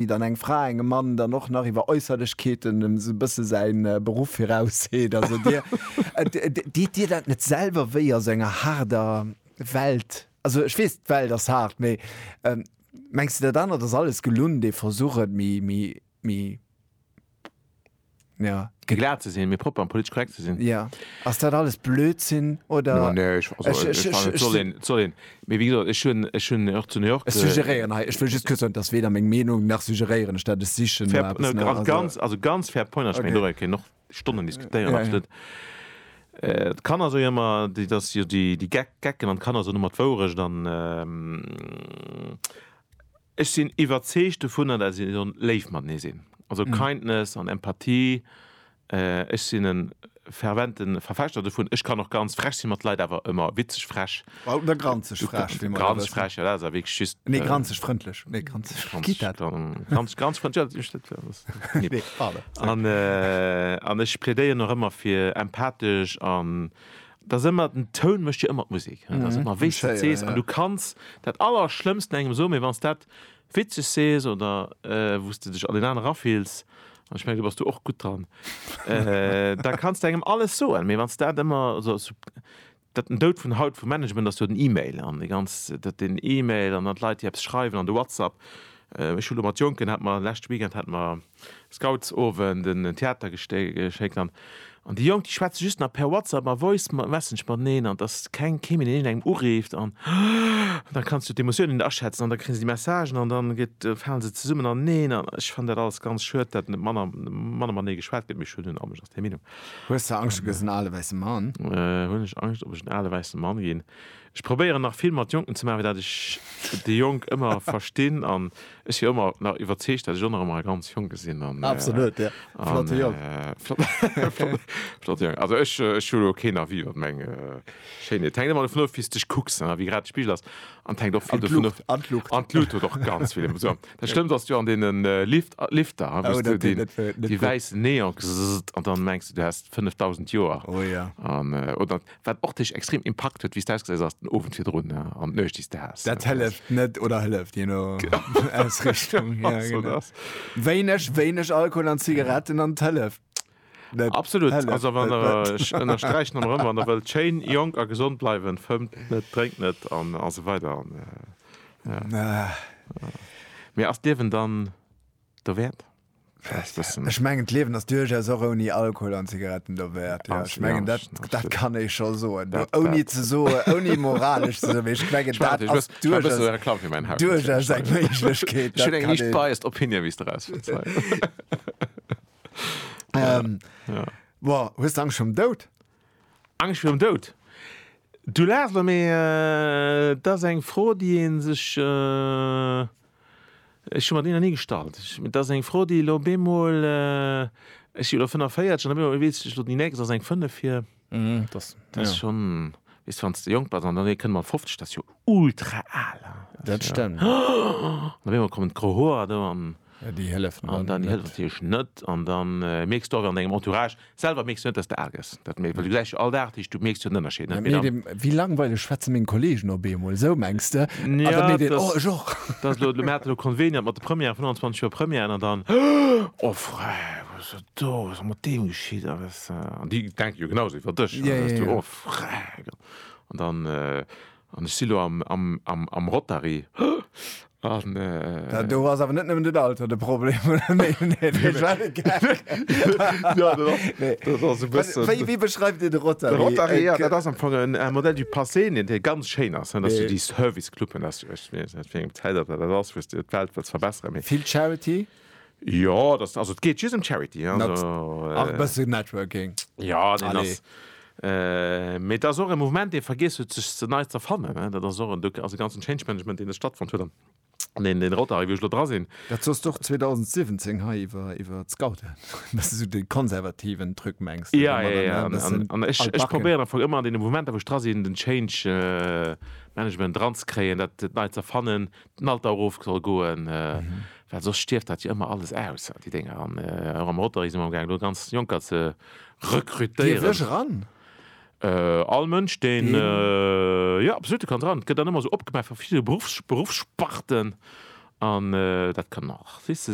wéi dann eng Fra engem Mann dann och nach iwwer Äusserlechkeeten esou e bësse säin Beruff virausseet. Also Dir, deet Dir dat net selwer wéi a sou enger haarder Welt? Also ech weess, d'Welt ass haart, mee mengs de dat anert ass alles gelunn, dee Versuch et méi, méi, méi. Ja. Fir glat ze sinn, mee propper an politesch korrekt ze sinn. Ja. Ass dat alles Blödsinn oder? No, nee, ech, also, ech, ech, ech, soll een, soll een. Mee wéi gesot, ech hunn, ech hunn och zu New York. Ech suggeréieren hei, ech wëll just kuerz soen, dass weder meng Meenung nach suggeréieren ech dat, ech sichen no eppes. Fair, no, ganz, also ganz fair point, okay. Meng, dorei kéint och Stonnen diskutéieren, ja, absolut. Ja. Äh, Kanner so ëmmer, déi dass jo déi, déi Geck, Gecken an Kanner so ëmmer d'Wourecht an. Ähm, Ech sinn iwwerzeegt dovunner, dat si sollen léif matenee sinn, also Kindness an Empathie. Ech sinn e fervente Verfechter dovun. Ech kann och ganz frech sinn mat Leit, awer ëmmer witzeg frech. Oder granzeg frech, wéi mer elo wëssen. Granzeg frech, jo, dat ass awer wierklech just. Nee, granzeg frëndlech. Nee, granzeg, wéi geet dat? Granzeg, granzeg frëndlech, jo, dat ass. Nee, pardon. An ech plädéieren och ëmmer fir empathesch an Dass ëmmer den Toun mécht jo ëmmer d'Musek, hein, dass ëmmer wéi s de et sees, an du kanns dat Allerschlëmmsten engem soen, mee wann s dat witzeg sees oder wou s de dech an deen anere erafills, an ech mengen do bass du och gutt dran, da kanns de engem alles soen, mee wann s dat ëmmer esou sub. Dat den Doud vun haut vum Management ass jo den E-Mail an déi ganz, dat den E-Mail an dann d'Leit déi eppes schreiwen an de WhatsApp. Ech hu lo mat Jonken, hat mer leschte Weekend hat mer. Scoutsowend, en Theatergéschéck an déi Jonk déi schwätze just nach per WhatsApp a Voice Messenge mateneen an et ass keng kee méi deen engem ureeft an da kanns du d'Emotiounen net aschätzen an da kréie se déi Messagen an dann gëtt fale se zesummen aneneen an ech fannen dat alles ganz schued dat net manner manner matenee geschwat gëtt mee ech hunn en anescht ass deng Meenung. Hues de Angscht, du gëss en ale wäisse Mann? Hunn ech Angscht, ob ech en ale wäisse Mann ginn? Ech probéieren nach vill mat Jonken ze maachen, well dat ech déi Jonk ëmmer verstinn an ech si ëmmer nach iwwerzeegt, dat ech och nach ëmmer e ganz Jonke sinn an e flotte Jong. Flotte Jong. Also ech hu elo keen Avis iwwer meng Schéinheet. Et hänkt ëmmer dovun of, wéi s de dech kucks an wéi grad de Spigel ass. An et hänkt och vill dovun of. An d'Luucht. An d'Luucht huet och ganz vill Inf. Esou, dat schlëmmst ass jo an deene Lift, Lifter, hein, wou s de deen, dee wäissen Neon, kzzzt, an dann mengs de, du häss 5000 Joer. Oh ja. An, oder Wat och dech extrem impakt huet, wéi s de ausgesäis ass den Owend virdrun an d'Nuecht, déi s de has. Dat hëlleft net oder hëlleft, je no Ausrichtung. Ja, Also, genau. dass- Wéineg, wéineg Alkohol an Zigaretten an et hëlleft. net. Absolut. Hëlleft Also, wann net, der, net. ech ënnersträichen emmer erëm, wann der wëllt schéin, jonk a gesond bleiwen, fëmmt net, drénkt net an esou weider an, äh, Ah, mee ass d'Liewen dann derwäert? Ech mengen d'Liewen ass duerchaus och ouni Alkohol an Zigaretten derwäert. Ja, ech mengen dat, dat kann ee scho soen. Ouni ze soe ouni moralesch ze soen, ech mengen dat ass duerchaus eng Méiglechkeet. Schonn eng liicht biased Opinion, wéi s de raus fënns. Hues d'Angscht virum Doud? Angscht virum Doud? Du laachs elo, mee et ass eng Fro, déi ee sech, ech hu mer déi nach ni gestallt, et ass eng Fro, déi elo op eemol, ech si elo 45 an op eemol weess ech, déi nächst ass eng 5 vir, dat ass schonn, weess, wann s de jonk bass an dann kënnt mat 50, dat ass jo ultra al, dat stemmt, an op eemol kommen d'gro Hoer do an. An déi hëllefen dann natierlech net. An da mierks du awer an dengem Entourage selwer mierks du net, dass de aarg ass. Dat mierks du, well du gesäis jo all Dag, du mierks jo den Ënnerscheed net. Mee dem, wéi langweileg schwätze meng Kolleegen op eemol, esou mengs de? An da mierkt een, oh, ech och. Dat ass elo, mir haten elo Conveniat mat de Premièren, 25 Joer Premièren, an dann, oh frei, wat ass dat do, wat ass mat deem geschitt, a wes. An déi denken jo genau esou iwwer dech, a da sees du, oh frei. An dann, An ech si lo am Rotary. An. Do ass awer net nëmmen den Alter de Problem, oder? Nee, nee, dat war e Gag. Jo, dat ass, dat ass e bëssen. Wéi, wéi beschreift Dir de Rotary? De Rotary, jo, dat ass am Fong en modèle du passé, deen hei ganz schéin ass, dass du déi Service-Cluben, ech weess net, aus wéi engem Zäitalter dat ass, wou s de d'Welt wëlls verbesseren, mee. Vill Charity? Jo dat also et geet just em Charity ach e bësse Networking jo deen ass mee et ass och e Mouvement dee vergiess huet sech ze nei z'erfannen ne dat ass och en Duc also de ganzen Change Management deen do stattfonnt huet an deen deen Rotary wou ech elo dra sinn. Dat soss d'och 2017 hei iwwer iwwer d'Scouten an dass de sou de konservativen Truc mengs jo jo jo an an an ech ech probéieren am Fong ëmmer an deene Mouvementer wou ech dra sinn den Change Management dranzekréien dat dat nei z'erfannen den Alter erof soll goen, well soss stierft dat jo ëmmer alles aus, déi Dénger. An och am Rotary si mer amgaangen, do ganz Jonker ze rekrutéieren. Dierf ech eran? All Mënsch, deen, jo, absolut, du kanns eran. Et gëtt dann ëmmer esou opgemaach fir verschidde Beruffs, Beruffssparten an dat kann och Artiste sinn.